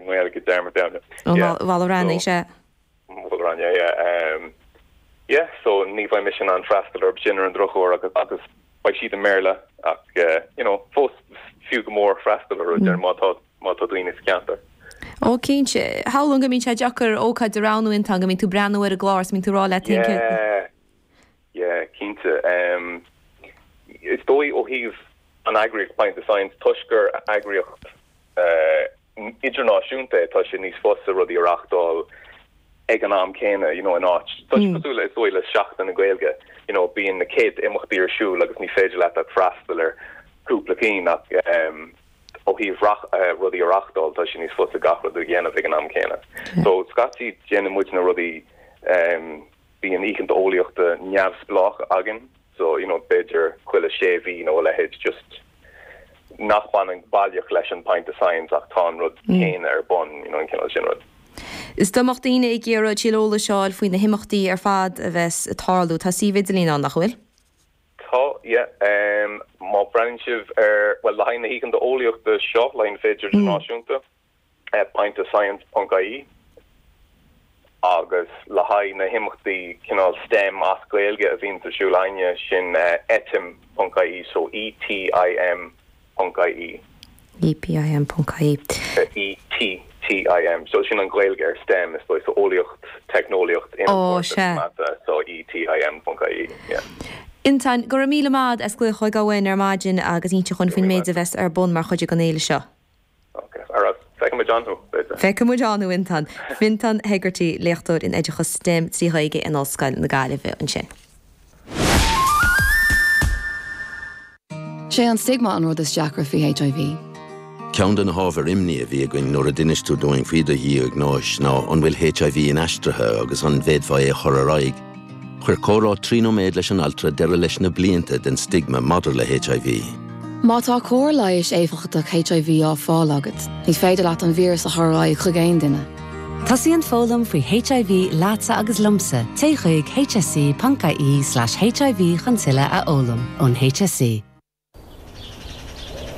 nGaeilge Dermot Downey. Ó Mhol a Rainey, sea. Mhol a Rainey, yeah. Yeah, so ní bheidh mise in ann freastal orthu sin ar an drochuair agus beidh siad i mBéarla ach, you know, fós fiú go mór freastal ar rudaí má tá, má tá daoine sa cheantar. Ó, cinnte. Samhlaím go mbíonn sé deacair ócáid a roghnú, Fintan, go mbíonn tú ag breathnú ar an gclár agus go mbíonn tú ag rá leat cén ceann. Yeah, yeah, cinnte. Is dóigh ó thaobh an eagraíocht Pint of Science, toisc gur eagraíocht idirnáisiúnta é, tá sé níos fusa rudaí a reáchtáil ag an am céanna, you know in áit, tá sé cosúil le, is dóigh le Seachtain na Gaeilge, you know bíonn na céadta imeachtaí ar siúl agus ní féidir leat ach freastal ar chúpla cinn ach ehm ó thaobh reach eh rudaí a reáchtáil, tá sé níos fusa gach rud a dhéanamh ag an am céanna. So scaití déanann muidne rudaí ehm bíonn oícheanta eolaíochta neamhspleácha againn, so you know b'fhéidir chuile sé mhí nó a leithéid just nach mbaineann baileach leis an Pint of Science ach tá an rud céanna ar bun you know an cineál sin rud. Is dá mbeadh daoine ag iarraidh tuilleadh eolais a fháil faoi na himeachtaí ar fad a bheas ag tarlú, tá suíomh idirlín ann nach bhfuil? Tá yeah má bhreathnaíonn sibh ar bhuel le haghaidh na hoícheanta eolaíochta seo le haghaidh na Féile Idirnáisiúnta pint of science ponc ie agus le haghaidh na himeachtaí cineál stem as Gaeilge a bhíonns ar siúl againne sin etim ponc ie so ETIM ponc ie. ETIM ponc ie. ETIM so sin an Ghaeilge ar stem is dóigh so eolaíocht, teicneolaíocht, innealtóireacht agus mata so ETIM ponc ie yeah. Fintan, go raibh míle maith agat as glaoch chugainn ar maidin agus inseacht dúinn faoin méid a bheas ar bun mar chuid den fhéile seo. Ok, ar ais. Feicfidh muid ann thú, b'fhéidir. Feicfidh muid ann thú Fintan. Fintan Hegarty, léachtóir in oideachas stem trí Ghaeilge in Ollscoil na Gaillimhe ansin. Sé an stigma an rud is deacra faoi HIV. Ceann de na hábhair imní a bhí againn nuair a d'inis tú dúinn faoi do dhiagnóis ná an bhfuil HIV inaistrithe agus an bhféadfá é a chur ar aghaidh. Chuir comhrá trí nóiméad leis an altra deireadh leis na blianta den stigma maidir le HIV. Má tá cóir leighis éifeachtach HIV á fáil agat, ní féidir leat an víreas a chur ar aghaidh chuig aon duine. Tosaíonn foghlaim faoi HIV leatsa agus liomsa, téigh chuig hse.ie/hiv chun tuilleadh a fhoghlaim ón HSE.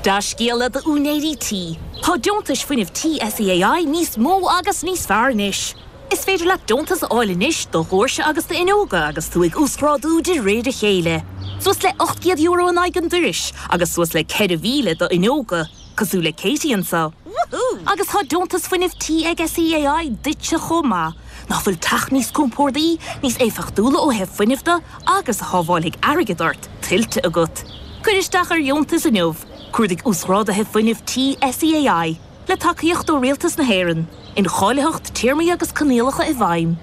Dea-scéala d'úinéirí tí, tá deontais fuinnimh tí SEAI níos mó agus níos fearr anois. Is féidir leat deontas a fháil anois do dhóirse agus d'fhuinneoga agus tú ag uasghrádú de réir a chéile, suas le €800 in aghaidh an dorais agus suas le €4,000 d'fhuinneoga. Cosúil le Katie anseo. Woohoo! Agus tá deontas fuinnimh tí ag SEAI duitse chomh maith. Nach bhfuil teach níos compórdaí, níos éifeachtúla ó thaobh fuinnimh de agus a shábháilfidh airgead ort, tuillte agat? Cuir isteach ar dheontas inniu, cuardaigh Uasghrádaithe Fuinnimh Tí SEAI, le tacaíocht ó Rialtas na hÉireann, Incháilitheacht, Téarmaí agus Coinníollacha i bhfeidhm.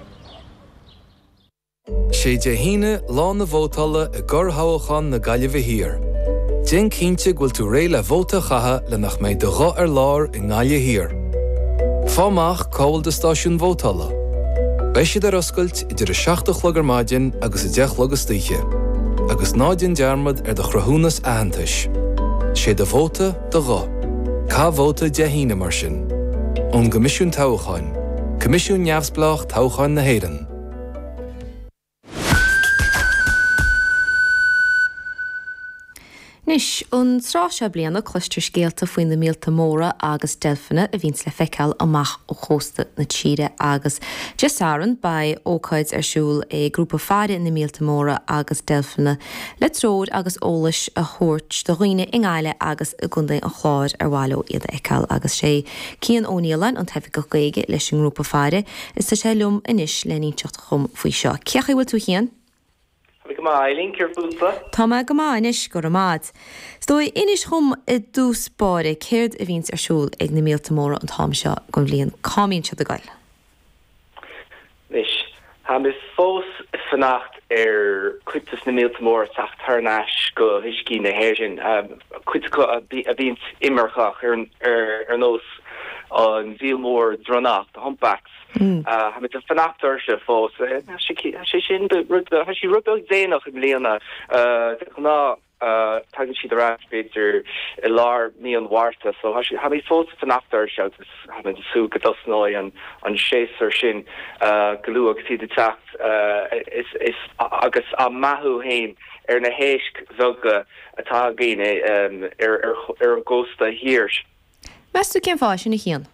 Sé Dé hAoine lá na vótála i gcorrthoghachán na Gaillimhe Thiar. Déan cinnte go bhfuil tú réidh le vóta a chaitheamh le nach mbeidh do ghuth ar lár i nGaillimh Thiar. Faigh amach cá bhfuil do stáisiún vótála. Beidh siad ar oscailt idir a seacht a chlog ar maidin agus a deich a chlog istoíche. Agus ná déan dearmad ar do chruthúnas aitheantais. Sé do vóta, do ghuth. Caith vóta Dé hAoine, mar sin. Ón gCoimisiún Toghcháin. Coimisiún neamhspleách toghcháin na hÉireann. Anois, an tráth seo bliana, cloistear scéalta faoi na míolta móra agus deilfeanna a bhíonns le feiceáil amach ó chósta na tíre agus Dé Sathairn beidh ócáid ar siúl ag Grúpa Faire na Míolta Móra agus Deilfeanna le treoir agus eolas a thabhairt do dhaoine i nGaillimh agus i gContae an Chláir ar mhaith leo iad a fheiceáil agus sé Cian Ó Nialáin, an tOifigeach Gaeilge leis an ngrúpa faire. Is tá sé liom anois len inseacht dhom faoi seo. Cén chaoi a bhfuil tú a Chian? Tá mé go maith, a Eileen, céard fútsa? Tá mé go maith anois, go raibh maith 'ad. Inis dhom i dtús báire céard a bhíonns ar siúl ag na míolta móra an t-am seo gon bhliain. Cá mbíonn siad ag goil? Anois, táim fós ag fanacht ar chuid de na míolta móra teacht thar n-ais go huiscí na hÉireann, cuid acu a bhíonns imirceach, ar nós an mhíol mór dronnach, the humpbacks. Táimid ag fanacht orthu fós. Tá sé sin, tá sí rud beag déanach i mbliana, de ghnáth. Tagann siad ar ais b'fhéidir i lár mí an Mhárta so tá siad, táimid fós ag fanacht orthu agus táim ag súil go dtosnóidh an an séasúr sin go luath agus iad ag teacht ar ais agus á mbeathú féin ar na héisc bheaga atá againn ar ar ar an gcósta thiar. Meas tú cén fáth sin, a Chiain?